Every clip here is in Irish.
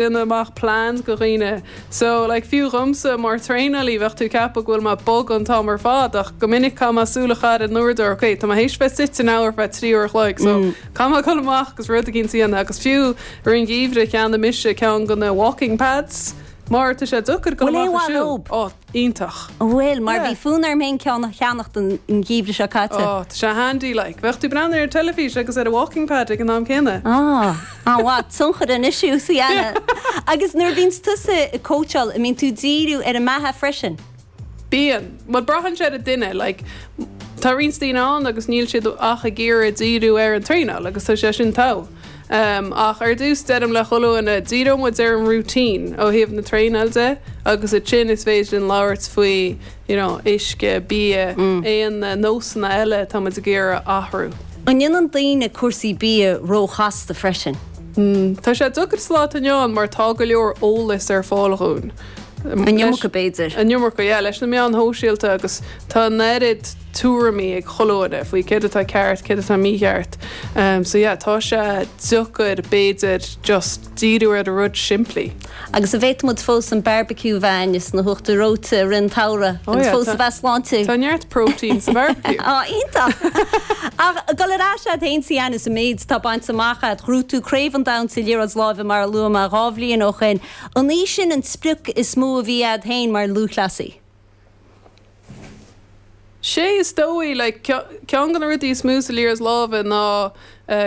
déanamh amach plans go dhaoine. So, like, fiú dhomsa mar traenalaí bheadh tú ag ceapadh go bhfuil mé bog an t-am ar fad ach go minic caithfidh mé súil a chaitheamh ar an uaireadóir, ok, tá mé théis bheith suite in áit ar feadh trí uair a chloig, so caithfidh mé dhul amach agus rud eicínt a dhéanamh agus fiú i rith an gheimhridh cheannaigh mise ceann go na walking pads mar tá sé deacair dhul amach ag siúl. Iontach. Bhuel, mar bhí fonn orm féin ceann a cheannacht an geimhreadh seo caite. Ó, tá sé handy, like. Bheadh tú ag breathnú ar an teilifís agus ar an walking pad ag an am céanna. Ó, an-mhaith, tionchar an issue sa Anna. Agus nuair a bhíonns tusa ag coacháil, an mbíonn tú ag díriú ar an mbeatha freisin? Bíonn. Bhuel, braitheann sé ar an duine, like. Tá roinnt daoine ann agus níl siad ach ag iarraidh díriú ar an traenáil agus tá sé sin togha. Um, ach ar dtús deirim le chuile dhuine, díreoidh muid ar an routine ó thaobh na traenáil de agus ansin is féidir linn labhairt faoi, you know, uisce, bia, aon nósanna eile atá muid ag iarraidh athrú. An ndéanann daoine cúrsaí bia ró-chasta freisin? Mm, tá sé deacair sa lá atá inniu ann mar tá go leor eolas ar fáil dhúinn. An iomarca b'fhéidir. An iomarca, yeah, leis na meáin shóisialta agus tá an oiread. tuairimí ag chuile dhuine faoi céard atá ceart, céard atá mícheart. So yeah, tá sé deacair b'fhéidir just díriú ar na rudaí simplí. Agus an bhféadfadh muid fós an barbecue a bheith againn is na huachtair reoite i rith an tsamhraidh Oh agus yeah, fós a bheith sláintiúil. tá neart protein sa barbecue. Á, iontach! Ach ag dul ar ais agat féin is an méid atá bainte amach a'd, ghnóthaigh tú Craobh an Domhain sa Liathróid Láimhe mar a luaigh mé dhá bhliain ó shin, an í sin an sprioc is mó a bhí agat féin mar lúthchleasaí? Sé is dóigh like ceann de na rudaí is mó sa liathróid láimhe ná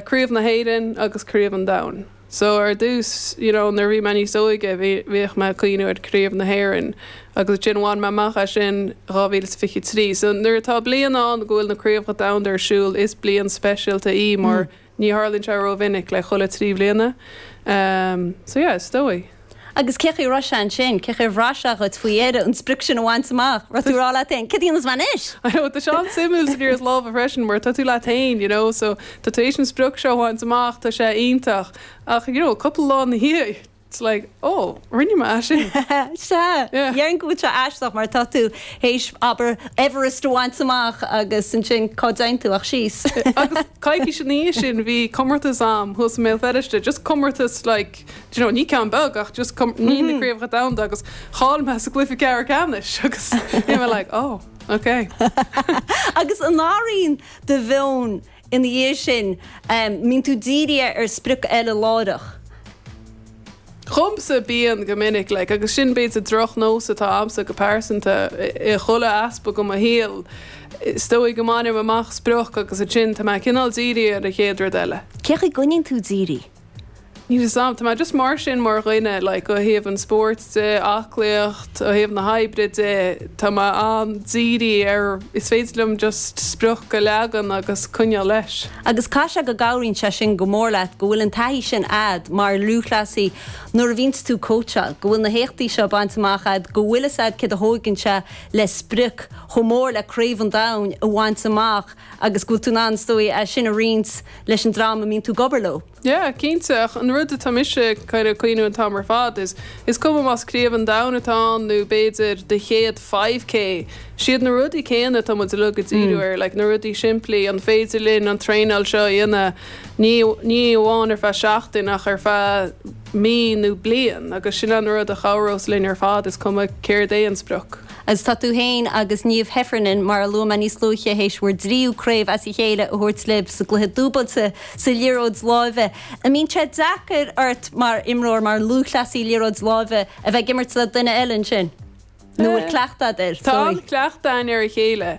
Craobh na hÉireann agus Craobh an Domhain. So ar dtús you know nuair a bhí mé níos óige bhí bhíodh mé ag cuimhniú ar Craobh na hÉireann agus ansin bhain mé amach é sin 2023. So nuair atá bliain ann go bhfuil na Craobhacha Domhanda ar siúl is bliain speisialta í mar Ní tharlaíonn sé ró-mhinic, like chuile trí bhliana. So yeah, is dóigh. Agus cén chaoi a raibh sé ansin? Cén chaoi a bhraith sé dhuit faoi dheireadh an sprioc sin a bhaint amach? Raibh tú ag rá leat féin, céard a dhéanfas mé anois? I know, tá sé an-suimiúil sa liathróid láimhe freisin mar tá tú leat féin, you know, so tá tú th'éis an sprioc seo a bhaint amach, tá sé iontach. Ach, you know, cúpla lá ina dhiaidh. It's like, oh, rinne mé é sin. Sea, déarfainn go bhfuil sé aisteach mar tá tú th'éis, abair, Everest a bhaint amach agus ansin cá dtéann tú ach síos. Agus coicís ina dhiaidh sin bhí comórtas a'm thuas i mBéal Feirste, just comórtas like, d'you know, ní ceann beag ach just com, ní na Craobhacha Domhanda agus chaill mé sa gcluiche ceathrú ceannais agus bhí mé like, oh, okay. Agus an athraíonn do mheon ina dhiaidh sin, mbíonn tú dírithe ar sprioc eile láithreach. Dhomsa bíonn, go minic, like, agus sin b'fhéidir drochnós atá agamsa go pearsanta, i chuile aspect go mo shaol, is dóigh go mbainim amach sprioc agus ansin tá mé cineál dírithe ar an chéad rud eile. Cén chaoi a gcoinníonn tú dírithe? Níl 'fhios a'm. Tá mé just mar sin mar dhuine like ó thaobh an spóirt de, aclaíocht, ó thaobh na hoibre de, tá mé an-dírithe ar rud is féidir liom just sprioc a leagan agus coinneáil leis. Agus caithfidh sé go gcabhraíonn sé sin go mór leat go bhfuil an taithí sin a'd mar lúthchleasaí nuair a bhíonns tú ag cóitseáil, go bhfuil na héachtaí seo bainte amach a'd, go bhfuil 'fhios a'd céard a thóigeann sé le sprioc chomh mór le Craobh an Domhain a bhaint amach agus go bhfuil tú in ann is dóigh é sin a roinnt leis an dream a mbíonn tú ag obair leo? Yeah, cinnte, ach an rud atá mise ag cuimhniú an t-am ar fad is, is cuma más Craobh an Domhain atá ann nó b'fhéidir do chéad five K, siad na rudaí céanna atá muid uilig ag díriú air, like na rudaí simplí, an féidir linn an traenáil seo a dhéanamh ní amháin ar feadh seachtain ach ar feadh mí nó bliain agus sin é an rud a chabhrós linn ar fad is cuma céard é an sprioc. Agus tá tú féin agus Niamh Heffernan, mar a luaigh mé níos luaithe, théis bhur dtríú craobh as a chéile a thabhairt libh sa gcluiche dúbailte sa liathróid láimhe. An mbíonn sé deacair ort mar imreoir, mar lúthchleasaí liathróid láimhe, a bheith ag imirt le duine eile ansin? Nó an bhfuil cleachtadh agat air? Tá an-chleachtadh againn ar a chéile.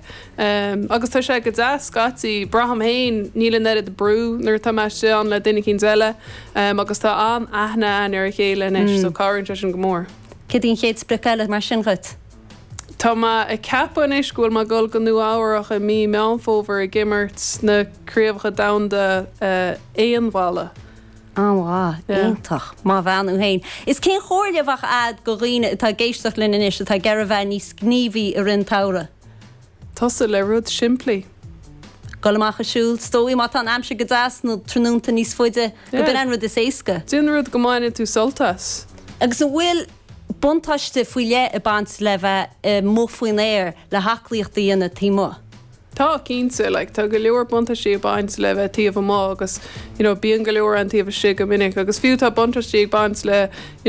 Agus tá sé go deas scaití. Braithim féin, níl an oiread brú nuair atá mé istigh ann le duine eicínt eile. Agus tá an-aithne againn ar a chéile anois so cabhraíonn sé sin go mór. Céard í an chéad sprioc eile mar sin dhuit? Tá mé ag ceapadh anois go bhfuil mé ag dul go Nua Eabhrach i mí Meán Fómhair ag imirt sna Craobhacha Domhanda Aon Bhalla. An-mhaith. Iontach. Maith an bhean thú féin. Is cén chomhairle a bheadh a'd go dhaoine atá ag éisteacht linn anois atá ag iarraidh bheith níos gníomhaí i rith an tsamhraidh? Tosú le rud simplí. Gul amach ag siúl, is dóigh má tá an aimsir go deas, na tráthnónta níos faide, gurb in é an rud is éasca. Déan rud go mbaineann tú sult as. Agus an bhfuil buntáiste faoi leith ag baint le bheith amuigh faoin aer le haclaíocht a dhéanamh taobh amuigh? Tá, cinnte. Like, tá go leor buntáistí ag baint le bheith taobh amuigh agus, you know, bíonn go leor againn taobh istigh go minic. Agus fiú tá buntáistí ag baint le, you know,